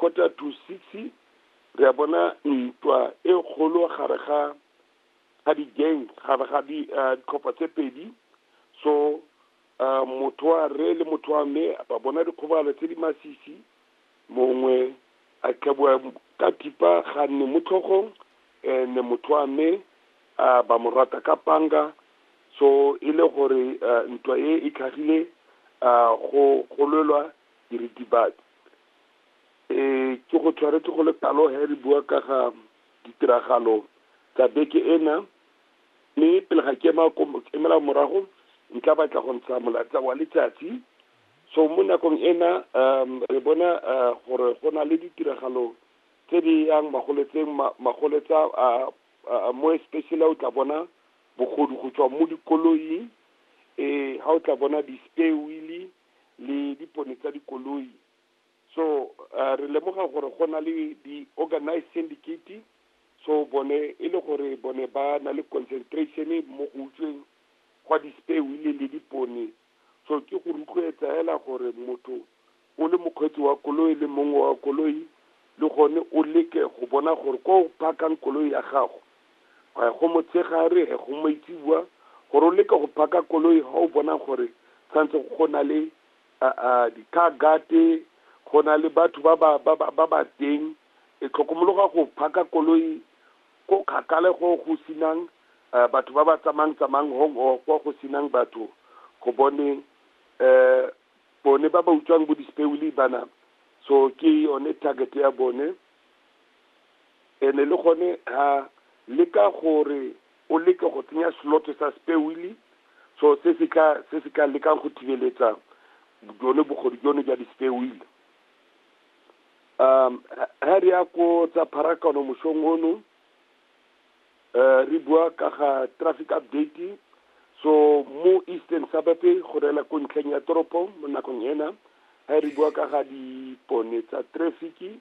Quarter to six, re a bona ntwa e kgolo gare ga ga di-gang gare ga ditlhopha tse pedi so uh, motho wa rre le motho wa mme ba bona dikgobalo tse di masisi mongwe a tlhabiwa ka thipa ga nne mo tlhogong and motho wa mme uh, ba mo rata ka panga so e le gore uh, ntwa e e tlhagile uh, go gololwa diritibatsi Ee, ke go tshwaretse go le talo he re bua ka ga ditiragalo tsa beke ena mme pele ga ke emela morago ntla batla go ntsha molatsa wa letsatsi so mo nakong ena um re bona uh, gore go na le ditiragalo tse di yang magoletseng magoletsa uh, uh, mo especially o tla bona bogodu go tswa mo dikoloing eh ha o tla bona di-spare wheelie le dipone tsa dikoloi so uh, re lemoga gore go na le di-organized syndicate so bone e le gore bone ba na le concentration mo go utsweng gwa di-spare wheel le dipone so ke go rotloetsa fela gore motho o le mokgweetsi wa koloi le mongwe wa koloi le gone o leke go bona gore ko o phakang koloi ya gago Ga go motshegare, ga go maitseboa, gore o leke go phaka koloi ga o bona gore tshwanetse go na le di-car guard, go na le batho ba ba teng. E tlhokomologa go phaka koloi ko kgakala go go senang batho ba ba tsamayang tsamayang hong or kwa go senang batho go bone bone ba ba utswang bo di-spare wheel bana. So ke yone target ya bone. Ene le gone ha leka gore o leke go tsenya slot sa spare wheel so se se tla se se tla lekang go thibeletsa jone bogodu jone ja di spare wheel um ha re ya ko tsa pharakano moshong ono Uh, re bua ka ga traffic update so mo eastern suburb go rela ko ntlheng ya toropo mo nakong ena ga re bua ka ga dipone tsa traffic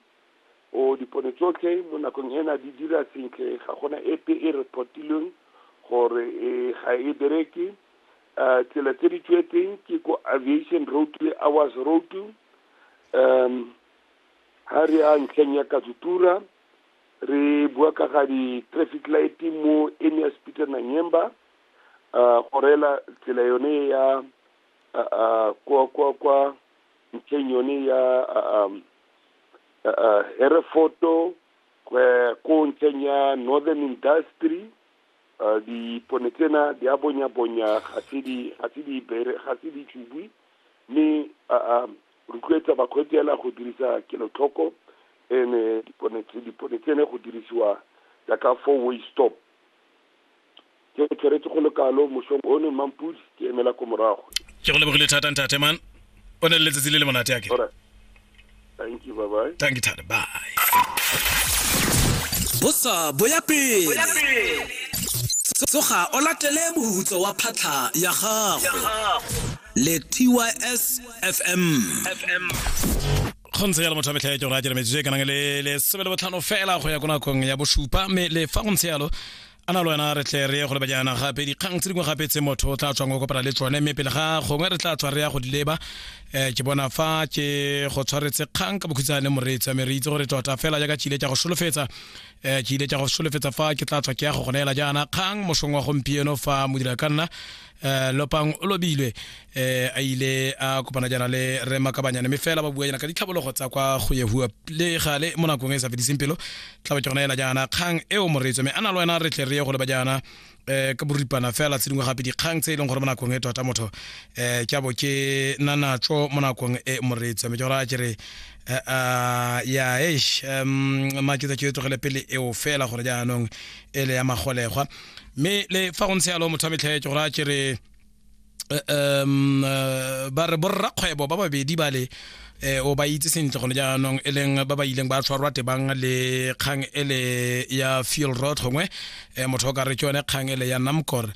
o dipone tsotlhe mo nakong ena di dira sentle ga gona epe e reportilweng gore e ga e bereke uh, tsela tse di tswetseng ke ko aviation road le hours road um ha re ya ntlheng ya katsutura Re bua ka ga di-traffic light mo Emias Peter Nanyemba, uh, go reela tsela yone ya uh, uh, kwa kwa kwa ntlheng yone ya uh, um, uh, uh, Herefoto uh, ko ntlheng ya Northern Industry uh, dipone tsena di a bonya bonya ga se di ga se di bere ga se di tšubwi mme uh, um, Rotloetsa bakgweetsi ela go dirisa kelotlhoko ene dipone tse dipone tsene go dirisiwa jaaka four way stop. Ke theretse go le kalo mosong one Mmampudi ke emela ko morago. Ke go lebogile thata ntate man o ne le letsatsi le le monate a kere. Thank you bye bye. Thank you thata bye. Bosa bo ya pele. Tsoga o latele mohutso wa phatlha ya gago. le tys fm kgontse yalo motho a metlha ya tšora a dira metsotso e kanang le lesome le botlhano fela go ya ko nakong ya bosupa mme le fa go ntse yalo a na le wena re tle re ye go lebajana gape dikgang tse dingwe gape tse motho o tla tswang go kopana le tsone mme pele ga gongwe re tla tswa re ya go di leba um ke bona fa ke go tshwaretse kgang ka bokhutshwane moreetsi mme re itse gore tota fela jaaka ke ile tsa go solofetsa um ke ile tsa go solofetsa fa ke tla tswa ke ya go go neela jaana kgang mosong wa gompieno fa modira ka nna Eh, lopang o lobilwe eh, a ile a kopana jana le re makabanyane mme fela ba bua jana ka ditlhabologo tsa kwa go yehua le gale mo nakong e sa fediseng pelo tla ke gona ela jana kgang eo moreetso mme a na le wena re tle re ye go leba jana eh, ka boripana fela tse dingwe gape dikgang tse e leng gore mo nakong e tota motho eh, ke abo ke na natso mo nakong e moreetso mme ke gore a ke re eh, ah, ya eish um, maketsa ke e tlogele pele eo fela gore jaanong ele ya magolegwa mme le fa go ntse yalo motho a metlhaetse gore a kere um ba re borrakgwebo ba babedi ba le eh, o ba itse sentle gone jaanong e leng ba ba ileng ba tshwarwa tebang le kgang ele ya fuel road gongwe eh, motho o ka re ke yone kgang ele ya namcor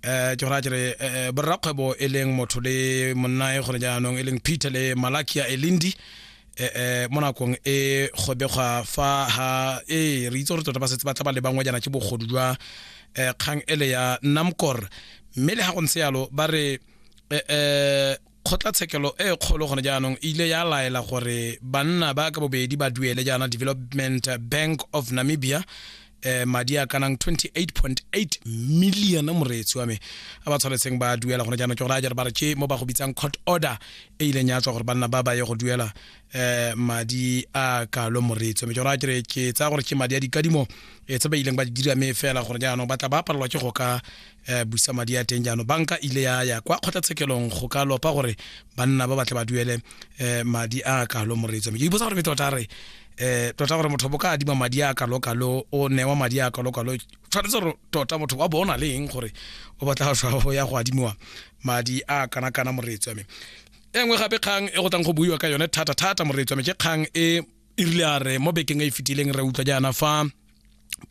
eh ke gora kere eh, borrakgwebo e leng motho le monnae gone jaanong e leng peter le malakia elindi eh, eh, mo nakong e kgobegwa fa ha ee re itse gore tota ba setse ba tla ba lebangwa jana ke bogodu jwa um kgang ele ya namcor mme le ga go ntse yalo ba re um kgotlatshekelo e kgolo gone jaanong e ile ya laela gore banna ba ka bobedi ba duele jaana development bank of namibia eh madi a kanang 28.8 million moreetsi wa me a ba tshwanetseng ba duela gone jaanong ke gore a jare ba re ke mo ba go bitsang court order e ileng ya tswa gore banna ba ba ye go duela eh madi a kalo moreetsi wa me ke gore a kere ke tsaya gore ke madi a dikadimo e tse ba ileng ba di dira me fela gore jaanong ba tla ba palelwa ke go ka eh, busa madi a teng jaanong banka ile ya ya kwa kgotlatshekelong go ka lopa gore banna ba batle ba duele eh, madi a kalo moreetsi wa me ke iposa gore me tota re eh tota gore motho bo ka adima madi a kalokalo o newa madi a kalokalo tshwanetse gore tota motho wa bona le eng gore o batla go ya go adimiwa madi a kana kana moreetsi wa me e nngwe gape kgang e go tlang go buiwa ka yone thata thata moreetsi wa me ke kgang e e rile a re mo bekeng e e fetileng re utlwa jaana fa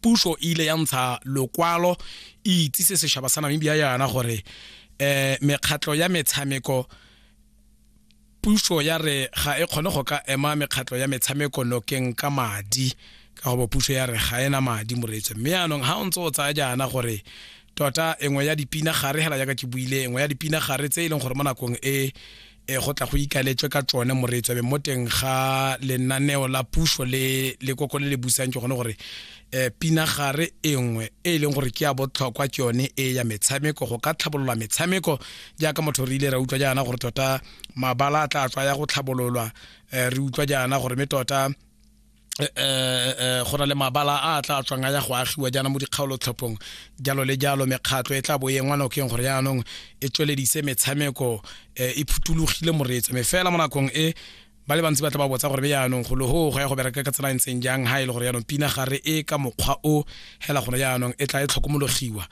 puso e ile ya ntsha lokwalo e itsise sešaba sa namibia yana gore um mekgatlho ya metshameko puso ya re ga e kgone go ka ema mekgatlho ya metshameko nokeng ka madi ka go bo puso ya re ga ena madi moreetso mme yaanong ga o ntse o tsaya jaana gore tota engwe ya dipina gare hela jaaka ke buile engwe ya dipina gare tse e leng gore mo nakong e e go tla go ikaletswe ka tsone moreetso be mo teng ga lenaneo la puso le le koko le le busang ke gone gore eh, pinagare e nngwe e e leng gore ke ya botlhokwa ke yone e ya metshameko go ka tlhabolola metshameko jaaka motho re ile ra utlwa jaana gore tota mabala a tla tswa ya go tlhabololwa eh, re utlwa jaana gore me tota Eh, eh, eh, go na le mabala a tla tswang a ya go agiwa jaana mo dikgaolotlhophong jalo le jalo mekgatlho e tla bo e ngwanokeng gore jaanong e tsweledise metshameko e phutulogile moreetso me fela mo nakong e ba le bantsi ba tla ba botsa gore be yaanong golo go go ya go bereka ka tsela e ntseng jang ga e le gore yaanong pina gare e ka mokgwa o hela gone jaanong e tla e tlhokomologiwa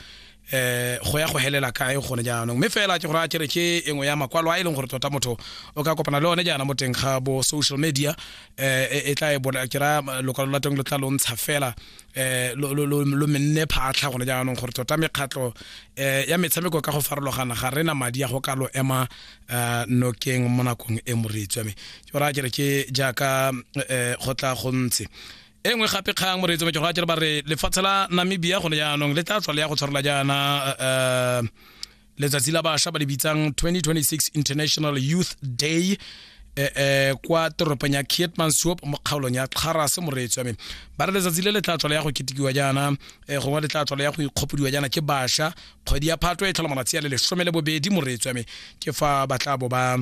eh go ya go helela kae gone jaanong mme fela ke gore a kere ke engwe ya makwalo a e leng gore tota motho o ka kopana le one jaana mo teng ga bo social media eh e tla e bona ke ra lokwalo la teng lo tla lo ntsha fela eh lo lo lo lo menne phatlha gone jaanong gore tota mekgatlho eh ya metshameko ka go farologana ga rena madi a go ka lo ema eh, nokeng mo nakong e moreetsi wa me ke gore a kere ke jaaka eh, go tla go ntse e nngwe gape kgang moreetsi wa me ke gore a kere ba re lefatshe la namibia gone jaanong le tla tswa le ya go tshwarela jaana eh, letsatsi la bašwa ba le bitsang 2026 international youth day eh, eh, kwa toropong ya kietmansop mo kgaolong ya kgarase moreetsi wa me ba re letsatsi le le tla tswala ya go ketekiwa jaana eh, gongwe le tla tswala ya go ikgopodiwa jaana ke bašwa kgwedi ya phatwe e tlhola malatsi a le lesome le bobedi moreetsi wa me ke fa ba tla bo ba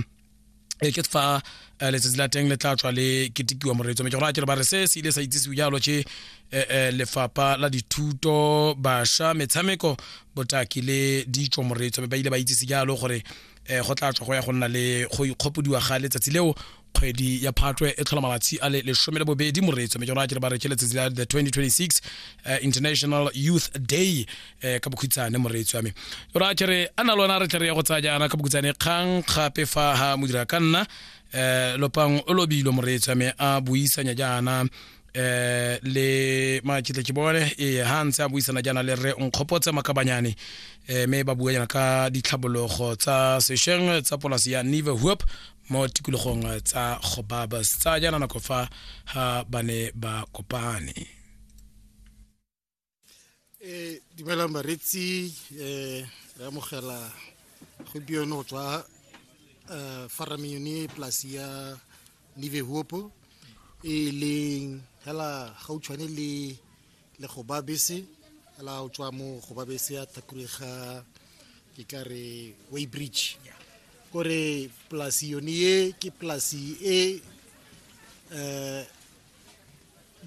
e ke fa eh, letsatsi la teng le tla tswa le ketekiwa moreetso mme ke gona kere ba re se se ile sa itsisiwe jalo ke eh, eh, lefapha la dithuto basha metshameko botaki le ditso moreetso mme ba ile ba itsise jalo gore eh, go tla tswa go ya go nna le go ikgopodiwa ga letsatsi leo kgwedi ya phatwe e tlhola malatsi a le lesome le bobedi moreetso mme ke gona kere ba re ke letsatsi la the 2026 eh, international youth day eh ka bokhutshane moreetsi wa me ra kere a na lona re tle re ya go tsaya jaana ka bokhutshane kgang gape fa ha modira ka nna eh lopang o lobilo moreetsi wa me a buisanya jaana eh le makitle ke bone e ha ntse a buisana jaana le re nkgopotse makabanyane eh me ba bua jaana ka ditlhabologo tsa sesheng tsa polasi ya Nive Hoop mo tikologong tsa Gobabas tsa jaana nako fa ha ba ne ba kopane e dumelang baretsi um re amogela gompieno go tswa um farameng yone polasi ya nive hopo e leng fela gautshwane le le go ba bese fela o tswa mo go ba bese ya thakurega ke ka re way bridge kore polasi yone ye ke polasi e um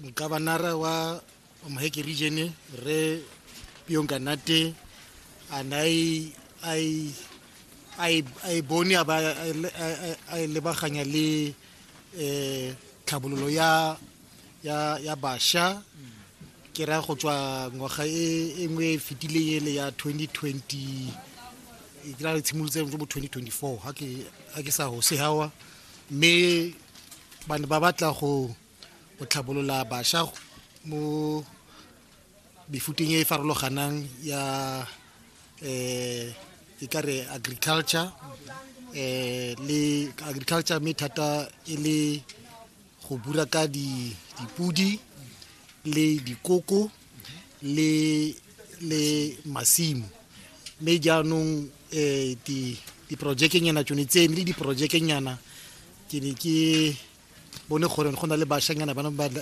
mokabanara wa moheke region re pionka nate a nai ai ai ai bone a ba a lebaganya le eh tlhabololo ya ya ya basha ke ra go tswa ngwaga e engwe e fetileng ele ya 2020 ke ra re tshimolotse mo 2024 ha ke ha ke sa hose hawa mme ba ne ba batla go tlhabolola bašwa mo mefuteng e e farologanang ya um e ka re agriculture um le agriculture mme thata e le go bura ka dipodi le dikoko le le masimo mme jaanong um diprojekenyana tsone tse ne le diprojekenyana ke ne ke bone gore go na le bashanyana bana